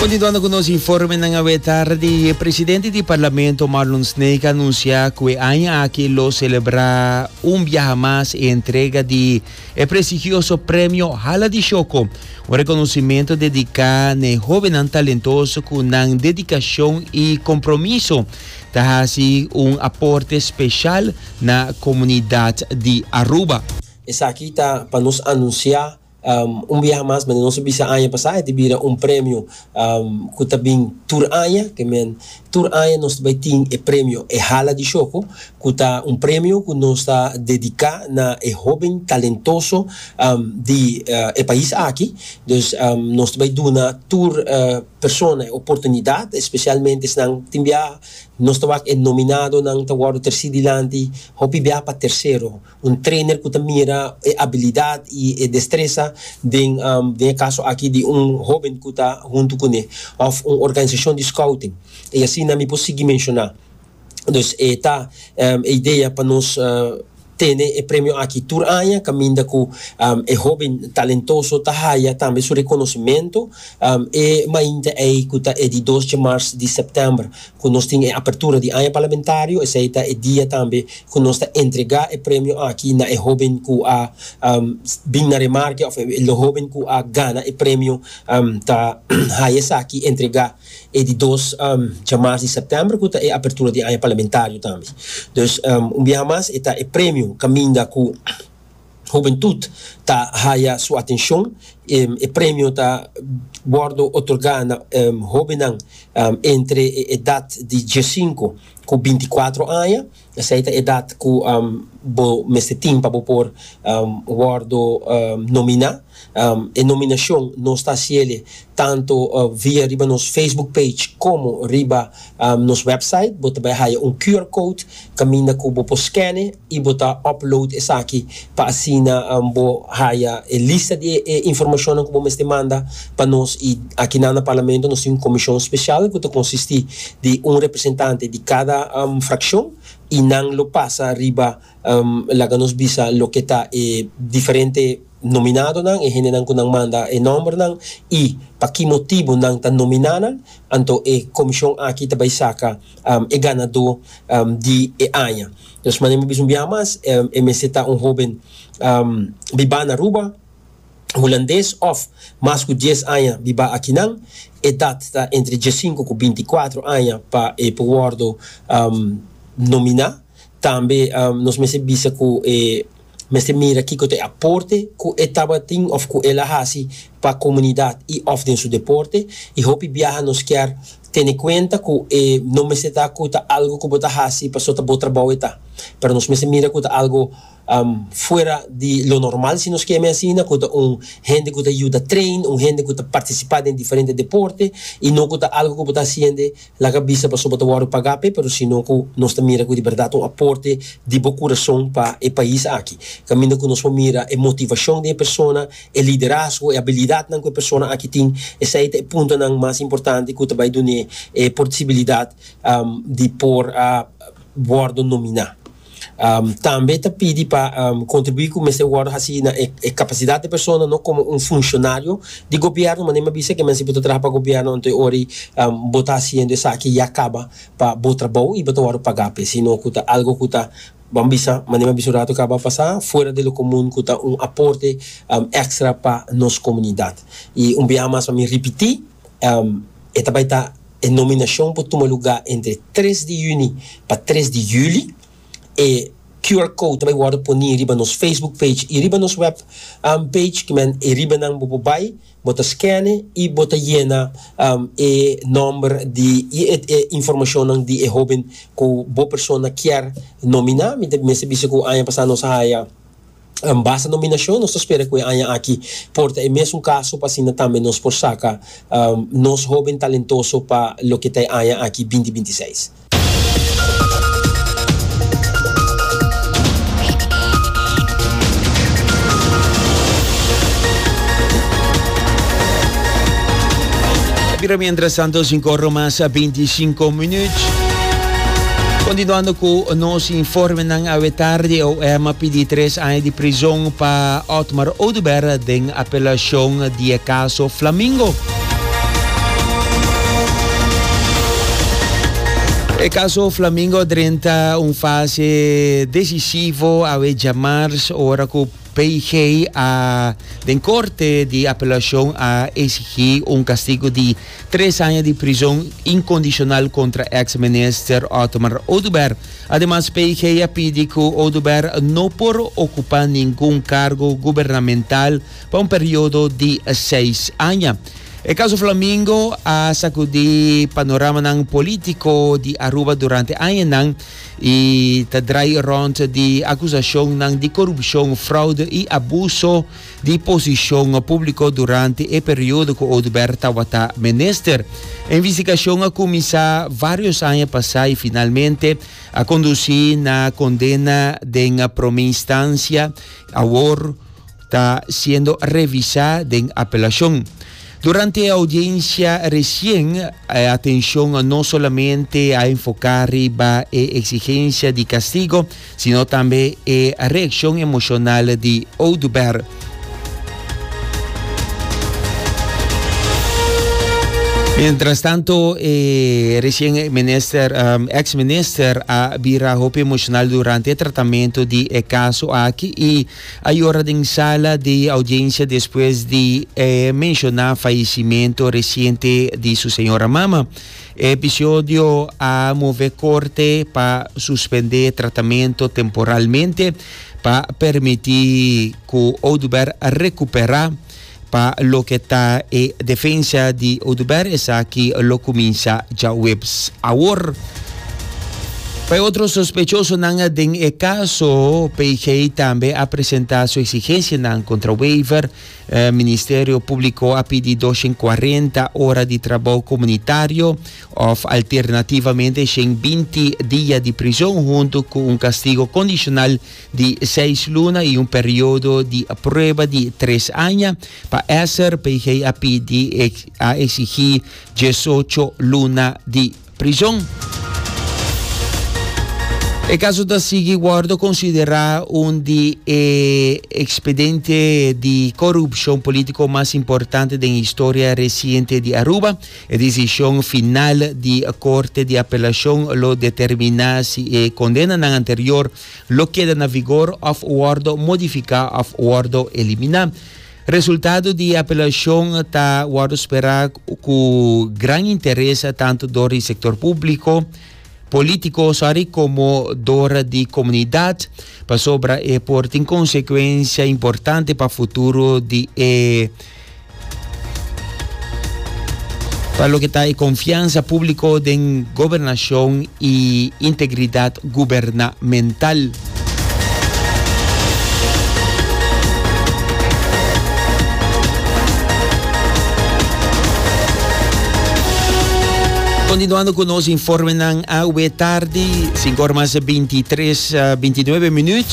Continuando cu nos informenan awe tardi, e presidente di Parlamento Marlon Snake a anuncia cu e aña aki lo celebra un biaha mas e entrega di e prestigioso premio Hala di Shoko, un reconocimento dedica na e hobennan talentoso cu nan dedicacion y compromiso ta haci un aporte special na comunidad di Aruba. Esaki ta pa nos anuncia Un biaha mas mende nos a bisa aña pasá, e ta bira un premio ku ta bin tur aña. Ke men, tur aña nos ta bai tin e premio E Hala di Shoko, ku ta un premio ku nos ta dediká na e hóben talentoso di e pais aki. Dus, nos ta bai duna tur persona e oportunidat, espesialmente esnan tin biaha nos ta wak e nominadonan ta wòrdu trasí dilanti, hopi biaha pa tersero. Un trainer cu ta mira e abilidad y e destresa den den e caso aki di un hoben cu ta hunto cu ne of un organizacion di scouting y asina mi por sigui menciona. Dus e ta e idea pa nos tene e premio aki tur aña caminda cu e hoben talentoso ta haya tambe su reconocimento e mainta ey cu ta e di dos dje mars di september. ku nos tin e apertura di aña parlamentario, esei ta e dia tambe ku nos ta entregá e premio aki na e hóben ku a bin na remarke òf e hóben ku a gana e premio. Ta haya esaki entregá e di dos djamars di sèptèmber ku ta e apertura di aña parlamentario tambe. Dus un biaha mas e ta e premio kaminda ku. Hobentut ta haya su atencion. E premio ta wordo otorga na hobennan entre e edad di diescinco cu binticuatro aña. Esey ta e edad cu bo mester tin pa bo por wordo nomina. E nominacion nos ta haciele tanto via riba nos Facebook page como riba nos website. Bo ta bay haya un QR code caminda cu bo por scane. y bo ta upload esaki pa asina bo haya e lista di e informacionnan cu bo mester manda pa nos y aki nan na Parlamento nos tin un comision special cu ta consisti di un representante di cada fraccion y nan lo pasa riba laga nos bisa loke ta e diferente nominadonan e hendenan cu nan manda e nombernan y pa ki motibo nan ta nomina nan anto e comision aki ta bay saca e ganador di e aña. Nos manera bo bisa un biaha mas, e mester ta un hóben bibá na Aruba, hulandes òf mas ku dies aña bibá akinan. Edat ta entre diesinku ku binti kuatro aña pa e por wòrdu nominá. Tambe nos mester bisa ku e. mester mira kiko ta e aporte ku e tabatin òf ku el a hasi pa komunidat i òf den su deporte. I hopi biaha nos kier tene kuenta ku e no mester ta ku ta algu ku bo ta hasi paso ta bo trabou e ta, pero nos mester mira ku ta algu fuera di lo normal, si nos ke mi asina, ku ta un hende ku ta yuda trein, un hende ku ta partisipá den diferente deporte i no ku ta algu ku bo ta hasiende Laga bisa paso bo ta wòrdu pagá p'e, pero sino ku nos ta mira ku di bèrdat un aporte di bo kurason pa e pais aki. Kaminda ku nos por mira e motivashon di e persona, e liderazgo, e abilidatnan ku e persona aki tin, esei ta e puntonan mas importante ku ta bai dun'é e porsibilidat di por wòrdu nominá. Tambe ta pidi pa kontribuí ku mester wòrdu hasi na e kapasidat di persona no komo un funshonarionan di gobièrnu manera mi a bisa ke mense bo ta traha pa gobièrnu anto e ora ei bo ta hasiendo esaki ya kaba pa bo trabou i bo ta wòrdu pagá p'e sino ku ta algu ku ta ban bisa manera mi a bisa un ratu kaba pasá fuera de lo komun ku ta un aporte èkstra pa nos komunidat i un biaha mas pa mi ripití e ta bai ta E nominashon por tuma lugá entre tres di yüni pa tres di yüli. E QR code ta bai wòrdu poní riba nos Facebook page i riba nos web page. Kimen e ribanan bo por bai, bo ta skène i bo ta yena e nòmber di i e informashonnan di e hóben ku bo persona kier nominá. Mi ta mester bisa ku aña pasá nos a haya. An basta nominashon, nos ta spera ku e aña aki por ta e mesun kaso pa asina tambe nos por saka nos hóben talentoso pa loke ta e aña aki binti binti seis. Bira miéntras tantu sin kòrda mas binti sinku minüt. Kontinuando ku nos informe. Nan awetardi OM a pidi tres aña di prizon pa Otmar Oduber den apelacion di e caso Flamingo. E caso Flamingo a drenta un fase decisivo awe djamars ora cu PIG a den corte di apelacion a exigi un castigo di tres aña di prizon incondicional contra ex minister Otmar Oduber. Ademas PIG a pidi cu Oduber no por ocupa ningun cargo gubernamental pa un periodo di seis aña. E caso Flamingo a sacudi panoramanan politico di Aruba durante añanan y ta draai rond di acusacionnan di corupcion, fraude y abuso di posishon a publicó durante e periodo cu Oduber tawata minister. E investigacion a cuminsa varios aña pasá y finalmente a conduci na condena den prome instancia, awor ta siendo revisá den apelacion. Durante e audiencia recien, e atencion no solamente a enfocá riba e exigencia di castigo, Sino tambe e reaccion emocional di Oduber. Mientras tanto e recien minister, ex minister a bira hopi emocional durante e tratamento di e caso aki y a yora den sala di audiencia despues di e menciona fallecimento reciente di su señora mama. E episodio a move Corte pa suspende e tratamento temporalmente pa permiti cu Oduber recupera. Pa loke ta e defensa di Oduber esaki lo cuminsa djaweps. Awor, pa e otro sospechosonan den e caso, PIG tambe a presenta su exigencianan contra Wever E Ministerio Públiko a pidi doshen kuarenta ora di trabou komunitario òf alternativamente shen binti dia di prizon huntu ku un kastigo kondishonal di seis luna i un periodo di prueba di tres aña. Pa Esser, PG a pidi a eksigí diesocho luna di. prison. E caso ta sigui wordo considera un di e expediente di corupcion politico mas importante den historia reciente di Aruba. E decision final di Corte di Apelacion lo determina si e condenanan anterior lo keda na vigor of wordo modifica of wordo elimina. Resultado di e apelacion ta wordo spera cu gran interes tanto door di sector publico, politico, sorry, como door di comunidad, pasobra e por tin consecuencia importante pa futuro di e pa loke ta e confiansa publico den gobernacion. y integridad gubernamental. Continuando cu nos informenan awe tardi, cinco ora mas bintitres bintinuebe minuut,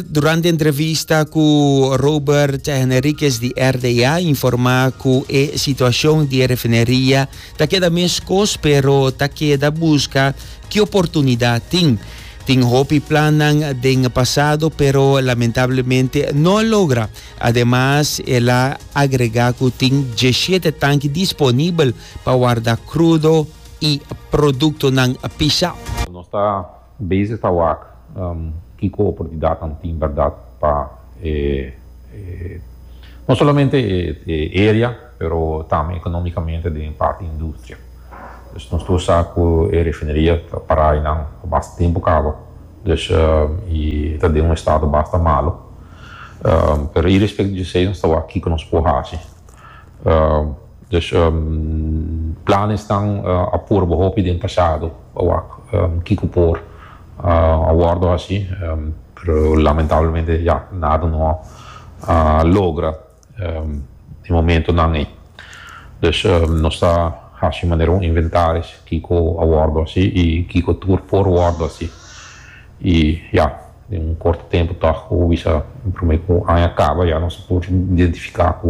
durante entrevista cu Robert Henriquez di RDA informa cu e situacion di e refineria Ta keda meskos pero ta keda buska ki oportunidat tin. Tin hopi plannan den pasado pero lamentablemente no a logra. Ademas el a agrega cu tin dieshiete tanki disponibel pa warda crudo y productonan pisao. Nos ta Bezig ta wak kiko oportunidatnan tin bèrdat pa e no solamente e area pero tambe ekonómikamente den e parti industria. Dus nos tur sa ku e refineria ta pará einan pa basta tempu kaba dus i ta den un estado basta malu pero irespek di esei nos ta wak kiko nos por haci Dus planes tan a purba hopi den pasado pa wak kico por a wordo haci, pero lamentablemente ya nada no a logra den momentonan ey. Dus nos ta haci manera un inventaris kico a wordo haci y kico tur por wordo haci y ya. Den un corto tempo tog cu bisa un prome cu un aña caba ya nos a por identifica cu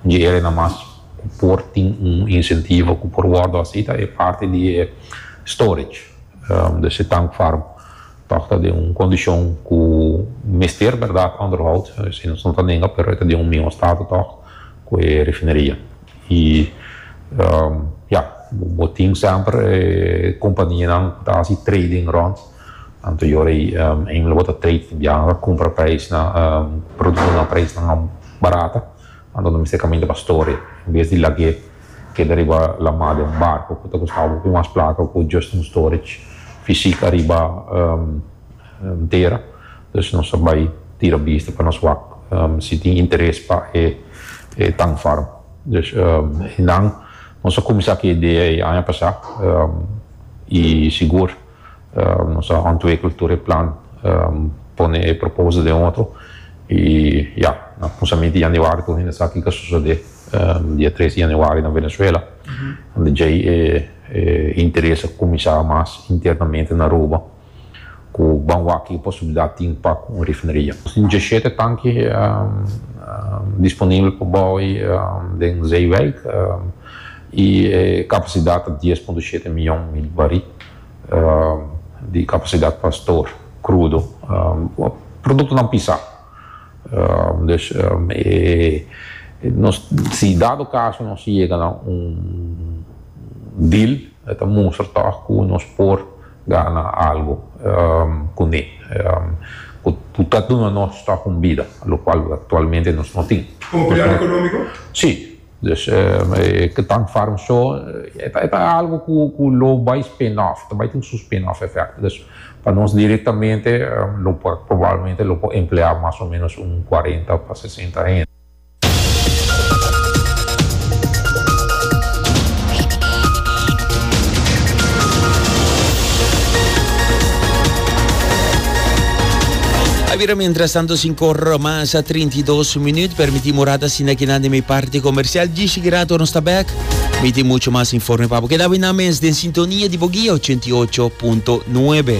un dje era e na mas cu por tin un incentivo cu por wordo haci ta e parti di e storage des e tank farm tog ta den un condicion cu mester berdad onderhoud esey nos no ta nenga pero e ta den un miho stato tog cu e refineria y ya bo tin semper e companianan cu ta haci trading rond. Anterior ey ey lo bota trade tin biaha lo cumpra prijs na productonan na prijs nan mas barata anto lo mester caminda pa store en bes di lag'e keda riba la mar den un barco cu ta costaba hopi mas placa o cu just un storage fisic ariba tera entonces nos a bay tira bista pa nos wak si tin interes pa e tank farm dus nan nos a cuminsa cu e idea ey aña pasa y sigur Nos a hònt wei kultur e plan pone e proposal den un otro i ya nan kumsa miti Januari tur hende sa kiko a sosodé dia tres Januari na Venezuela unda djei e interes a kuminsá mas internamente na Aruba ku ban wak ki posibilidat tin pa un refineria. Tin djeshete tanki disponibel pa bou den zeewijk. y e capacidad ta dies punto shete miyon mil barí di capacidad pa store crudo productonan pisá dus nos si dado caso nos yega na un deal e ta mustra tog cu nos por gana algo cuné cu ta duna nos tog un bida lo cual actualmente nos no tin. Con un pilar economico? Sí. Dus e ke tank farm so e ta algo ku lo bai spin-off, ta bai tin su spin-off efect. Dus pa nos direktamente lo por probablmente lo por empleá mas o menos un cuarenta pa sesenta hende. A bira mientras tanto sin corro mas. Sa trinta i dos minüt, permití Morata sinda kinan den mi parti komersial. Djischi Gera tor nos ta bèk. Mi tin muchu mas informe pa bo. Keda awe nan mes den sintonia di bo guia ochenta i ocho punto nuebe.